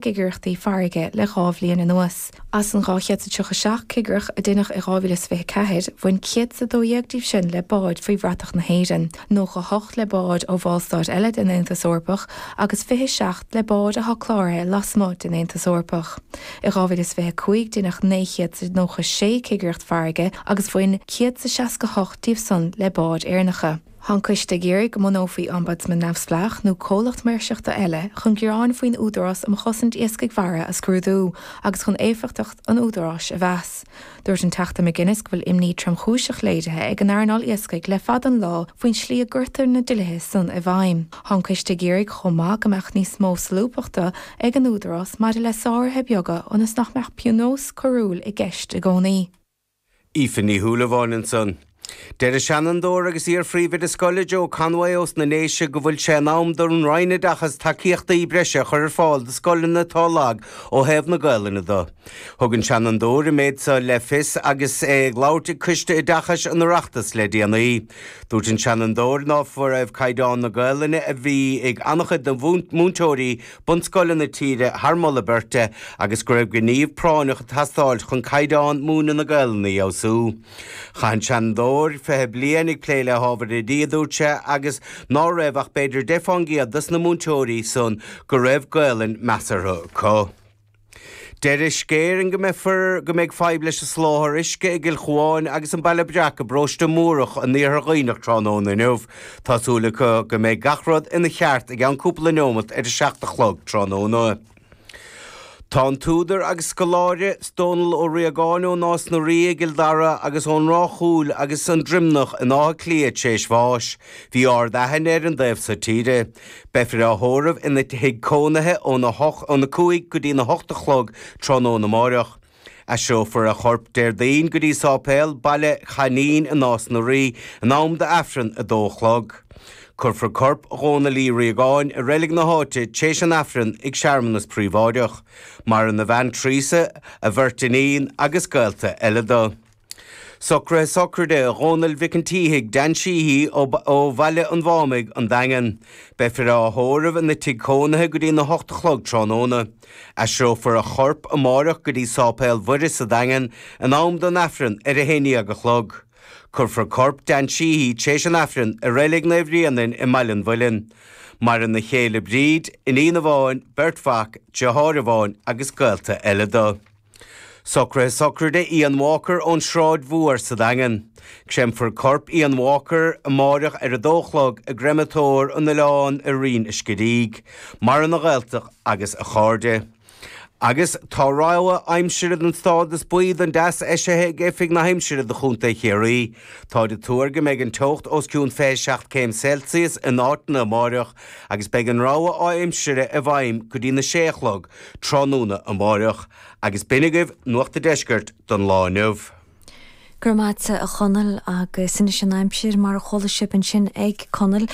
cigireachtaí farraige le dhá bhliain anuas. As an 237 cigireacht a deineadh i 2024, bhain 112 díobh sin le báid faoi bhratach na hÉireann, 98 le báid ó bhallstáit eile den Aontas Eorpach agus 27 le báid atá cláraithe lasmuigh den Aontas Eorpach. I 2025 deineadh 996 cigireacht farraige agus bhain 168 díobh san le báid Éireannacha. Tá an coiste ag iarraidh go mbunófaí Ombudsman neamhspleách nó comhlacht maoirseachta eile chun gearáin faoin Údarás um Chosaint Iascaigh Mhara a scrúdú agus chun éifeachtacht an Údaráis a mheas. Dúirt an Teachta McGuinness go bhfuil imní tromchúiseach léirithe ag an earnáil iascaigh le fada an lá faoin slí a gcuirtear na dlíthe san i bhfeidhm. Tá an coiste ag iarraidh chomh maith go mbeadh níos mó solúbthachta ag an Údarás maidir le sáruithe beaga ionas nach mbeadh pionós coiriúil i gceist i gcónaí. Aoife Ní Shúilleabháin ansan. Deir seanadóir agus iar-phríomhoide scoile Joe Conway ós na nDéise go bhfuil sé in am don Roinn Oideachais tacaíochtaí breise a chur ar fáil do scoileanna atá lag ó thaobh na Gaelainne de. Thug an seanadóir an méid seo le fios agus é ag labhairt ag Coiste Oideachais an Oireachtais le déanaí. Dúirt an seanadóir ná raibh caighdeán na Gaelainne a bhí ag an-chuid de mhúinteoirí bunscoileanna na tíre thar mholadh beirte agus go raibh gníomh práinneach ag teastáil chun caighdeán múineadh na Gaelainne a fheabhsú. Chaith an Seanadóir fiche bliain ag plé le hábhair oidí, a dúirt sé, agus ná raibh ach b'fhéidir deich fán gcéad dos na múinteoirí san go raibh Gaelainn measartha acu. Deir Uisce Éireann go mbeifear go mbeidh fadhb leis an soláthar uisce i gCill Chuáin agus an Baile Breac i bparóiste Mórdhach in Iarthar Dhuibhneach tráthnóna inniu. Tá súil acu go mbeidh gach rud ina cheart i gceann cúpla neomat tar éis a seacht a chlog tráthnóna. Tá an t-údar agus scoláire, Dónall Ó Riagáin ó Nás na Rí i gCill Dara agus ón Ráth Chúil agus An Droimneach in Áth Cliath tréis bháis. Bhí ardaithne air an dtaobh so tíre. Beifear á thórramh ina thigh cónaithe óna hocht, óna cúig go dtí na hocht a chlog tráthnóna amárach. Aistreofar a chorp Déardaoin go dtí sáipéal Baile Uí Chainín i Nás na Rí in am do Aifreann a dó a chlog. Cuirfear corp Dhónail Uí Riagáin i reilig na háite t'réis an Aifreann ag searmanas príobháideach. Maireann a bhean Tríosa, a bheirt iníon agus gaolta eile do. Socruithe Sochraide Dhónaill Mhic an tSíthigh, Dan Sheehy, ó Bhaile an Mhathamhnaigh, An Daingean. Beifear á thórramh ina thigh cónaithe go dtí'n a hocht a chlog tráthnóna. Aistreofar a chorp amáireach go dtí Sáipéal Mhuire sa Daingean in am don Aifreann ar a haon dhéag a chlog. Cuirfear corp Dan Sheehy tréis an Aifrinn i Reilig Naomh Bréanainn i mBaile an Mhuilinn. Maireann a chéile Bríd, iníon amháin, beirt mhac, deartháir amháin agus gaolta eile do. Socraithe sochraide Ian Walker ón Sráid Mhór sa Daingean. Créamfar corp Ian Walker amáireach ar a dó a chlog i gCréamatóir an Oileáin i Rinn an Scidígh. Méala mór dá ghaolta agus a chairde. Agus tá rabhadh aimsire don stádas buí don teas eisithe ag Oifig na hAimsire do Chontae Chiarraí. Táid ag tuar go mbeidh an teocht os cionn 27 céim Celsius in áiteanna amáireach agus beidh an rabhadh aimsire i bhfeidhm go dtí na sé a chlog tráthnóna amárach agus b'in agaibh Nuacht an Deiscirt don lá inniu. Go raibh maith a't, a Chonaill, agus anois an aimsir, mar a chuala sibh ansin ag Conall,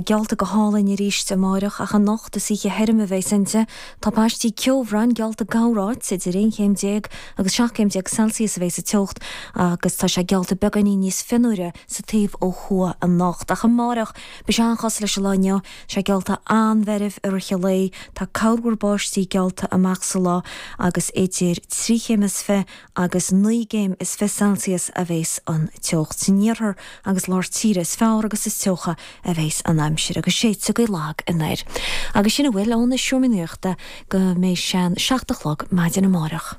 geallta go hálainn arís amárach, ach anocht is oíche thirim a bheas inti. Tá paistí ceobhráin geallta i gcorráit, idir aon chéim déag agus seacht gcéim déag Celsius a bheas an teocht, agus tá sé geallta beagáinín níos fionnuaire sa taobh ó thuaidh anocht. Ach amárach, beidh sé an-chosúil leis an lá inniu, Sé geallta an-mheirbh i rith an lae, tá corrmhúr báistí geallta amach sa lá agus idir trí chéim is fiche agus naoi gcéim is fiche celsius a bheas an teocht. San iarthar agus lár tíre is fearr agus is teocha a bheas an aimsir agus séideadh go lag anoir. Agus sin a bhfuil ón seomra nuachta go mbeidh sé an seacht a chlog maidin amárach.